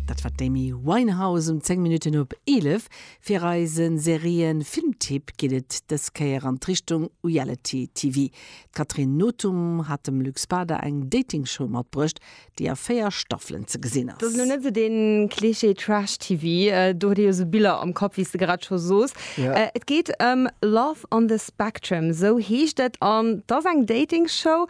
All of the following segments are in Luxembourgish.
Dat war d'Amy Winehouse um 10 Minutten op 11. Fir eise Serien-Filmtipp geet et dës Kéier an d'Richtung Reality TV. D'Catherine Nothum hat dem Luc Spada eng Dating-Show matbruecht, déi a 4 Staffelen ze gesinn ass. Dat ass elo net esou de Klischee Trash TV, do huet ee jo esou Biller am Kapp, wéi s de grad scho soos. Et geet ëm Love on the Spectrum, esou heescht et, an 't ass eng Dating-Show,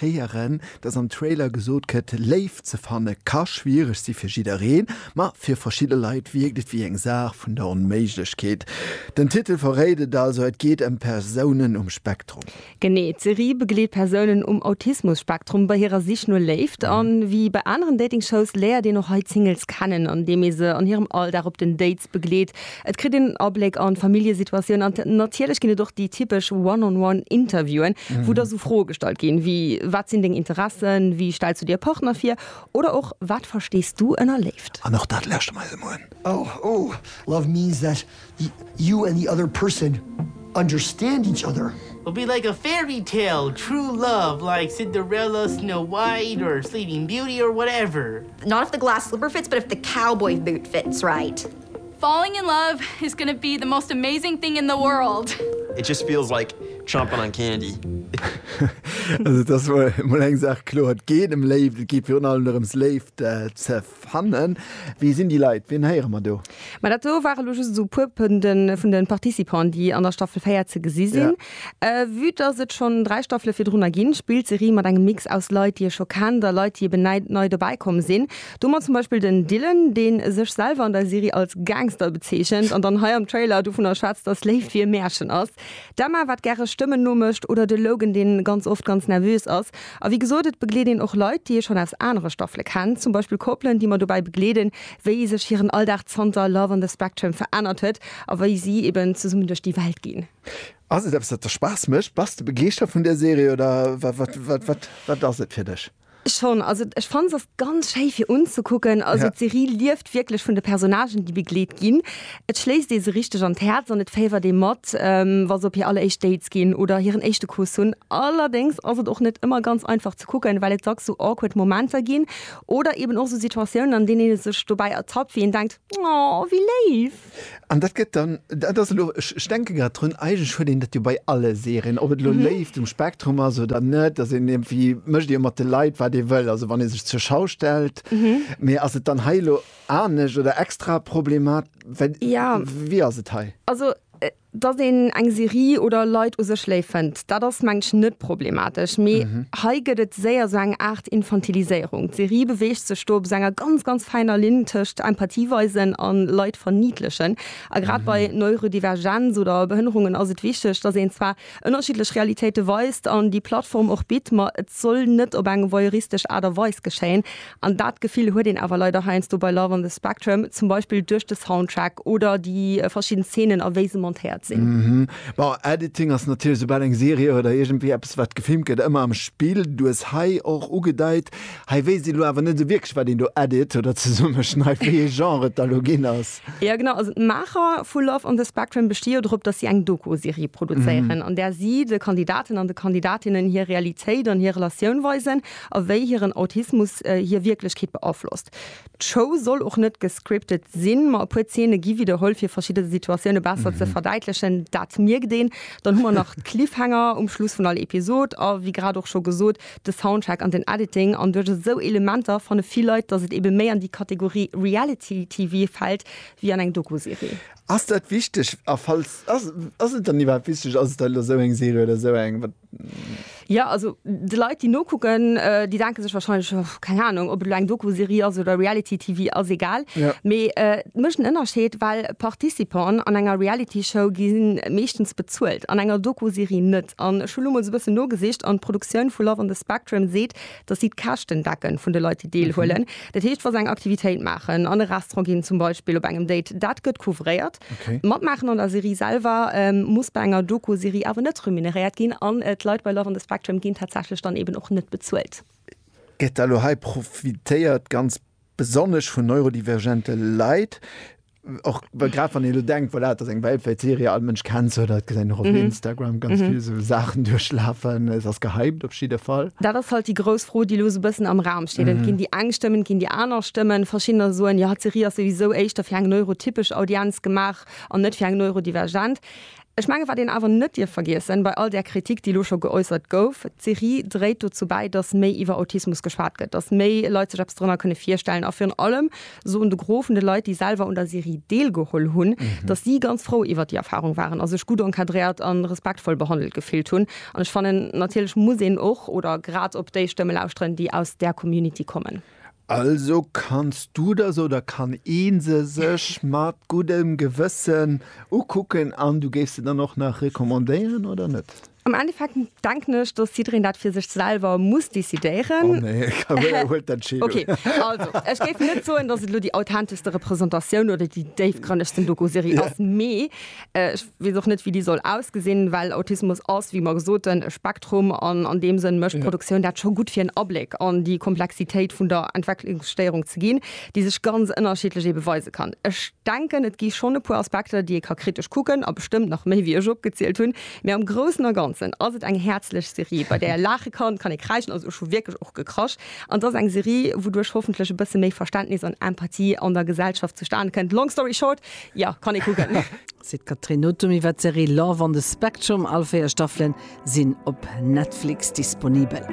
héieren, dass am Trailer gesot gëtt, Léift ze fanne ka schwiereg si fir jiddereen, ma fir verschidde Leit wierkt et wéi eng Saach vun der Onméiglechkeet. Den Titel verréit et also, et geet ëm Persounen um Spektrum. Genee, d'Serie begleet Persounen um Autismus-Spektrum bei hirer Sich no Léift. A wéi bei aneren Dating-Shows léiert een och hei d'Singles kennen, andeem ee se an hirem Alldag op den Dates begleet. Et kritt een Abléck an d'Familljesituatioun an natierlech ginn et och déi typesch One-on-One Interviewen, wou da sou Froe gestallt ginn, wéi wat sinn deng Interessen, wéi stells du dir e Partner vir oder och wat verstees du ënner Léift. An och dat lauschteren mer eis emol un. Oh, oh, love means that you and the other person understand each other. Will be like a fairy tale, true love like Cinderella, Snow White or Sleeping Beauty or whatever. Not if the glass slipper fits, but if the cowboy boot fits right. Falling in love is gonna be the most amazing thing in the world. It just feels like chompin' on candy. Also et ass mol eng Saach kloer, et geet em Léift, et geet virun allem dorëms Léift ze fannen. Wie sinn déi Leit, wien héiere mer do? Ma dat do ware lo just esou e puer vun de Participante, déi an der Staffel 4 ze gesi sinn. Vue dass et schonn 3 Staffele virdrunner ginn, spillt d'Serie mat engem Mix aus Leit, déi ee scho kennt a Leit, déi eben näi nei dobäi komm sinn. Domat zum Beispill den Dylan, dee sech selwer an der Serie als Gangster bezeechent an dann hei am Trailer dovunner schwätzt, dass Léift wéi e Märchen ass, d'Emma, wat gäre Stëmmen nomécht oder de Logan, dee ganz oft ganz nervös ass. A wéi gesot, et begleet een och Leit, déi ee schonn aus anere Staffele kennt, zum Beispill Koppelen, déi mer dobäi begleeden, wéi sech hiren Alldag zanter Love on the Spectrum verännert huet a wéi si eben zesummen duerch déi Welt ginn. Ass et eppes dat der Spaass mécht? Bass de begeeschtert vun där Serie oder wat ass et fir dech? Schonn, also ech fannen se ass ganz schéi fir unzekucken. Also d'Serie lieft wierklech vun de Personnagen déi begleet ginn. Et schléisst ee se richteg an d'Häerz an et féiwert ee mat wa se op hir alleréischt Dates ginn oder hiren éischte Kuss hunn. Allerdéngs ass et och net ëmmer ganz einfach ze kucken, well et dacks sou awkward Momenter ginn oder eben och sou Situatiounen an deenen ee sech dobäi ertappt wéi een denkt, oh wéi léif. An dat gëtt dann, dat ass elo, ech denke grad drun, eigentlech huet een dat jo bei alle Serien, ob et elo Léift um Spektrum ass oder net, dass een iergendwéi, mécht ee jo mat de Leit, wat ee wëll, also wann ee sech zur Schau stellt. Mee ass et dann hei elo anescht oder extra problemat-, well, wéi ass et hei? Also Dass een eng Serie oder Leit u sech léif fënnt, dat ass mengen ech net problematesch, mee hei gëtt et séier sou eng Aart Infantiliséierung. D'Serie beweegt sech do op sou enger ganz, ganz fäiner Linn tëscht Empathie weisen a Leit verniidlechen. A grad bei Neurodivergenz oder Behënnerungen ass et wichteg, dass een zwar ënnerschiddlech Realitéite weist an déi Plattform och bitt, ma et soll net op eng voyeuristesch Aart a Weis geschéien, An dat Gefill huet een awer leider heiansdo bei Love on the Spectrum, zum Beispill duerch de Soundtrack oder déi verschidden Zeenen a wéi se montéiert sinn. Mhm. Bon, Editing ass natierlech, soubal eng Serie oder iergendwéi eppes wat gefilmt gëtt, ëmmer am Spill. Du hues hei och ugedeit, hei weess een elo awer net esou wierklech wat een do edit oder zesummeschneit, wéi ee Genre et da elo ginn ass. Jo genau, also d'Maacher vu Love on the Spectrum besti jo drop, datt si eng Doku-Serie produzéieren, an där si de Kandidaten an de Kandidatinnen hir Realitéit an hir Relatioun weisen a wéi hiren Autismus hir Wierklechkeet beaflosst. D'Show soll och net gescriptet sinn, ma e puer Zeene gi widderholl, fir verschidde Situatioune besser ze verdäitlechen. Dat mierkt een. Dann hu mer nach d'Cliffhanger um Schluss vun all Episod a wéi grad och scho gesot, de Soundtrack an den Editing. An duerch esou Elementer fanne vill Leit, datt et ebe méi an déi Kategorie Reality TV fält wéi an eng Doku-Serie. Ass dat wichteg? A falls, ass et dann iwwerhaapt wichteg? Ass et dann elo esou eng Serie oder esou eng? Ja, also de Leit déi nokucken, äh, déi denke sech wahrscheinlech oh, keng Ahnung, ob et lo eng Doku-Serie ass oder Reality TV ass egal. Ja. Mee äh, mécht en Ënnerscheed, well Participanten an enger Reality Show gi meeschtens bezuelt, an enger Doku-Serie net. An ech hu lo mol sou bëssen nogesicht an d'Produktioun vu Love on the Spectrum seet, datt si d'Käschten decken vun de Leit déi deelhuelen. Dat heescht wa se eng Aktivitéit maachen, an e Restaurant ginn zum Beispill, op engem Date, dat gëtt couvréiert. Okay. Matmaachen an der Serie selwer ähm, muss bei enger Doku-Serie awer net remuneréiert ginn an et Leit bei Love on the Spectrum ginn tatsächlech dann eben och net bezuelt. Gëtt da lo hei profitéiert ganz besonnesch vun neurodivergente Leit? Och well grad wann ee lo denkt, voilà, dat ass eng weltwäit Serie, all Mënsch kennt se, dat gesinn och op Instagram ganz vill esou Saachen duerchlafen, et ass gehypt op jidde Fall. Dat ass halt déi grouss Fro, déi lo esou bëssen am Raum Steet, ginn déi eng Stëmmen, ginn déi aner Stëmmen. Verschiddener soen, jo, d'Serie ass souwisou éischter fir eng neurotypesch Audienz gemaach an net fir eng neurodivergent. Ech mengen, wat een awer net dierf vergiessen, bei all där Kritik, déi elo scho geäussert gouf, d'Serie dréit dozou bäi, datt méi iwwer Autismus geschwat gëtt, datt méi Leit sech eppes dorënner kënne virstellen a virun allem, soen de Gros vun de Leit, déi selwer un der Serie deelgeholl hunn, datt si ganz frou iwwert déi Erfarung waren a sech gutt encadréiert a respektvoll behandelt gefillt hunn. An ech fannen, natierlech muss een och oder grad op déi Stëmme lauschteren, déi aus där Community kommen. Also kanns du der se oder kann ee se sech mat guddem Gewëssen ukucken an du géifs se dann och nach recommandéieren, oder net? Am Endeffekt denken ech, dass jiddereen dat fir sech selwer muss decidéieren. Oh nee, Carole huet d'Entscheedung. Okay, also ech géif net soen, dass et elo déi authenteschste Repräsentatioun oder déi déifgrënnegsten Doku-Serie ass, mee ech weess och net, wéi déi soll ausgesinn, well Autismus ass, wéi mer soten, e Spektrum an an deem Sënn mécht d'Produktioun dat scho gutt, fir en Abléck an déi Komplexitéit vun der Entwecklungsstéierung ze ginn, déi sech ganz ënnerschiddlech ebe weise kann. Ech denken, et gi schonn e puer Aspekter, déi ee ka kritesch kucken a bestëmmt nach méi, wéi ech opgezielt hunn. Mee am Groussen a Ganzen ass et eng häerzlech Serie, bei där ee laache kann, kann ee kräischen, also ech hu wierklech och gekrasch, an et ass eng Serie, wouduerch hoffentlech e bësse méi Verständnis an Empathie an der Gesellschaft zustane kënnt. Long story short, jo, kann ee kucken. Seet d'Catherine Nothum iwwer d'Serie Love on the Spectrum. All 4 Staffele sinn op Netflix disponibel.